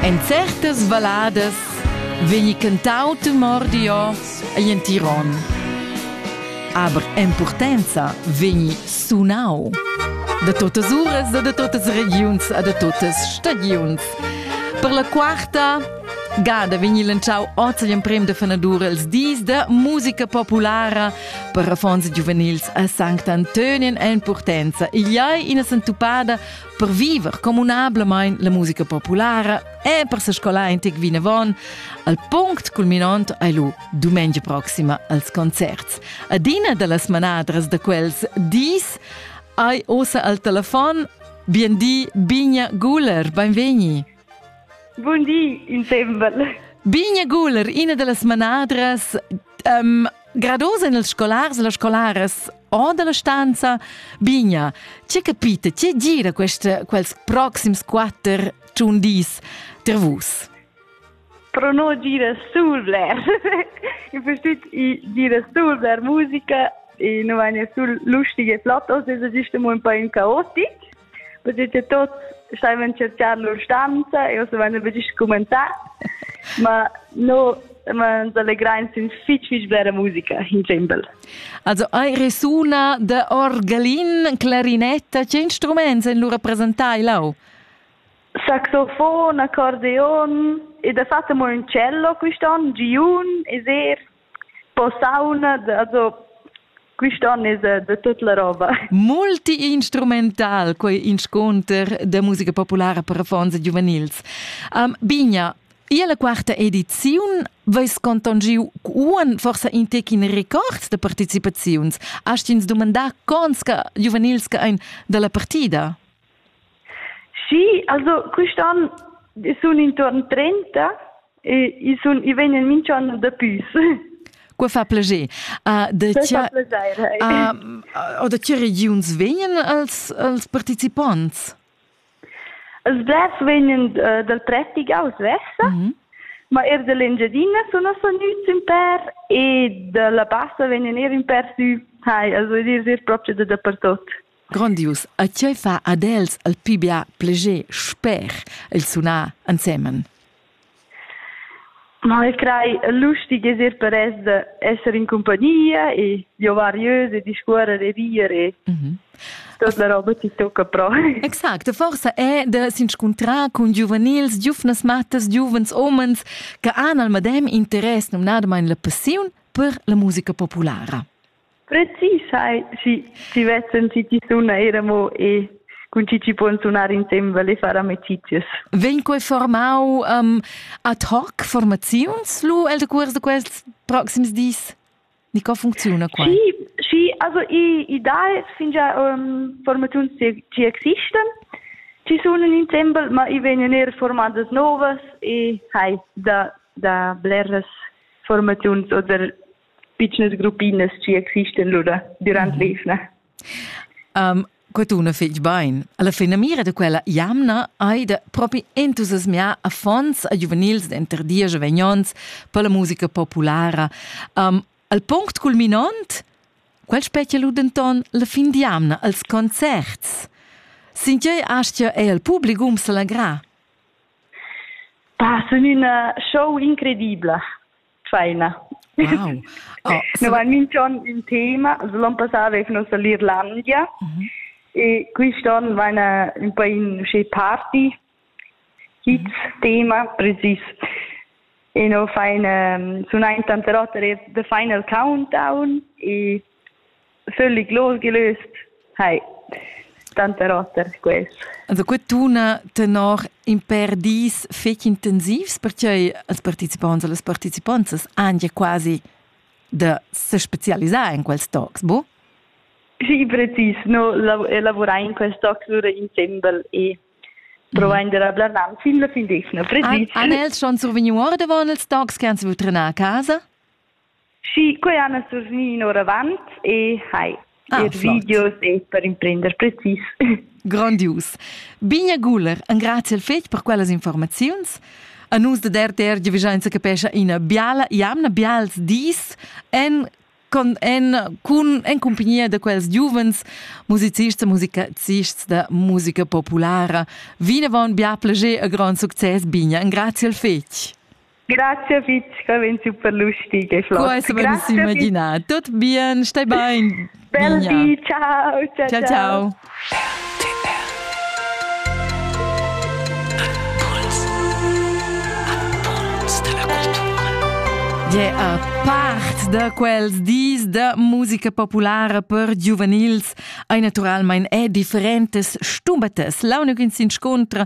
En certas valladas vegni cantau temordio egl entiron. Aber impurtenza vegni sunau da totas uras, da totas regiuns e da totas stagiuns. Per la quarta gada vegni lanciau oz l'emprem da fanadur els dis da musica populara per affons giuvenils a Sankt Antonien en Purtenza. Igl ei ina sentupada per viver communablamain la musica populara e per se scolar in tic vinavon, al punct culminant hai lu dumengia proxima als concerts. Adina dallas manadras da quels dis hai osa al telefon Biendi Bigna Guller, benvegni. Bun di, in sembel. Bigna Guler, ina dallas manadras um, grados en els scolars e las scolaras o dalla stanza. Bigna, tge capita, tge gira queste, quels proxims quatter tun dis ter vus? Pro no gira sul bler. In verstüt i gira sul bler musica e no vagna sul lustige flottos, es gist mo un po in caotic. Perché che tuts staivan tschercar lur stanza e uss avain betg scumenzà. Ma no ma ens allegrain sin fich fich blera musica in dschembel. Also hai resuna de orgelin, clarinetta, che instruments en lu representai lau? Saxofon, accordeon e da fatta mo un cello quest'on, giun e ser. Posauna, also quist'on es da tut la roba. Multiinstrumental quei inscunter da musica populara per affons e giuvenils. Um, Bigna, Ia la quarta ediziun veis contongiu uan forsa in tecin records de participaziuns. Hast ins domandà cons che giuvenils che ein dalla partida? Sì, also quest'anno sun intorno 30 E i sun i vegnan minch'an dapüs. Qua fa plascher. Uh, da tia, uh, o da che regiuns vegnan els, els participonts? Els blers vegnan uh, dal Trettigau svessa, mm -hmm. ma er dall'Engiadina sun els vegnüts in per e dalla Bassa vegnan er in per sü. Hai, also dir, dir proprio da dapertot. Grondius ei tgei fa ad els el pli bia pleger sper il sunar ensemen. Ma ich crei lustig esser per es de esser in compagnia e di ovariös e discuorer e dire. Mm -hmm. Tot la roba ti tocca pro. Exact, forsa è de s'inscuntrar cun giuvenils, giuvnas mattas, giuvens omens che han al medem interess numnadamain la passiun per la musica populara. Precis sai, schi, schi vessen chi chi suna eir amo e cun chi chi pon sunar insembel e far amicizias. Vegn quei formau um, ad hoc formaziuns lu el decuors de quests proxims dis? Ni co funcziuna quai? Sì, sì, also i, i dà es fingià um, formaziuns che, che existan, ci sunen insembel, ma i vegnan eir formadas novas e hai da, da bleras formaziuns oder pitschnas gruppinas chi existan lura dürant l'eivna. Um, quattuna fich bain. Alla finamira da quella jamna hai da propi entusiasmiar affons a giuvenils denter dies e vegnons per la musica populara. Um, al punct culminant, quel specie lu denton la fin di jamna als concerts. Sintiei astia è al publicum salagrà. Pa, sun una show incredibile. Tscheina. Wow. Oh, Novan minch'on in tema, also l'on passà avev nus l'Irlandia mm -hmm. e quist'on vaina un po in uscè party, kids mhm. tema, precis. E no fain, um, sun aint tante rote de final countdown e Sülli gloschi lüst, hai, tanter oter quest. Also quattuna tenor in per dis fetg intensivs perquei als participants e las participantas han ja quasi da se specialisar in quels talks, bu? Sì, precis, no lavorar in quels talks lura insembel e provare di rablarnam fin la fin d'esna, precis. Han els schon survegniu ordavon ils talks che han saviu trenar a casa? Schi, quei han els survgni in oravant e hai ah, er videos e per imprender precis. Grandius. Bigna Guler, engrazia il fetg per quellas informaziuns. A nus da DRTR giavischainsa capescha ina biala jamna, bials dis en con, en, cun, en compagnia da quels giuvens musicists e musicists da musica populara. Vinavon bia plager e grand success, Bigna. Engrazia il fetg. Grazie Fitg, avais super lustig e flott. Questo me lo si immagina. Tutto bien, stai bene. Bel di, ciao. Ciao, ciao. ciao. Yeah, part da quels dis da musica populara per giuvenils ei naturalmein è differentes stumbatas. L'unic in s'inscontra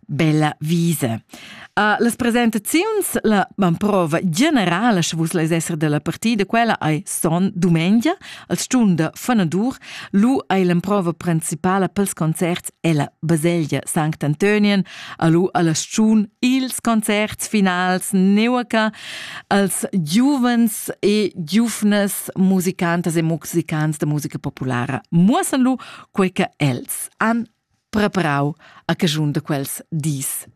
bella visa. Uh, las presentaziuns, la prova generala, sche vus leis esser della partida, quella ei son dumengia, al stunda fanadur, lu ei l'emprova principala pels concerts ella baselgia Sankt Antonien, alu alla stun ils concerts finals neuaca, als giuvens e giuvnas musicantas e musicants de musica populara muossan lu quei che els han preparau a caschun da quels dis.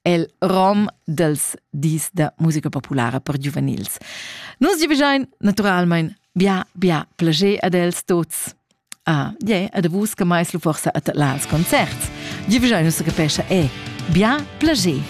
El rom dels dis da musica populara per giuvenils. Nus gi begein naturalmein bia, bia plager ad els tots. Ah, je, ad vus che mai lu forsa at las concerts. Gi begein nus capescha e bia plager.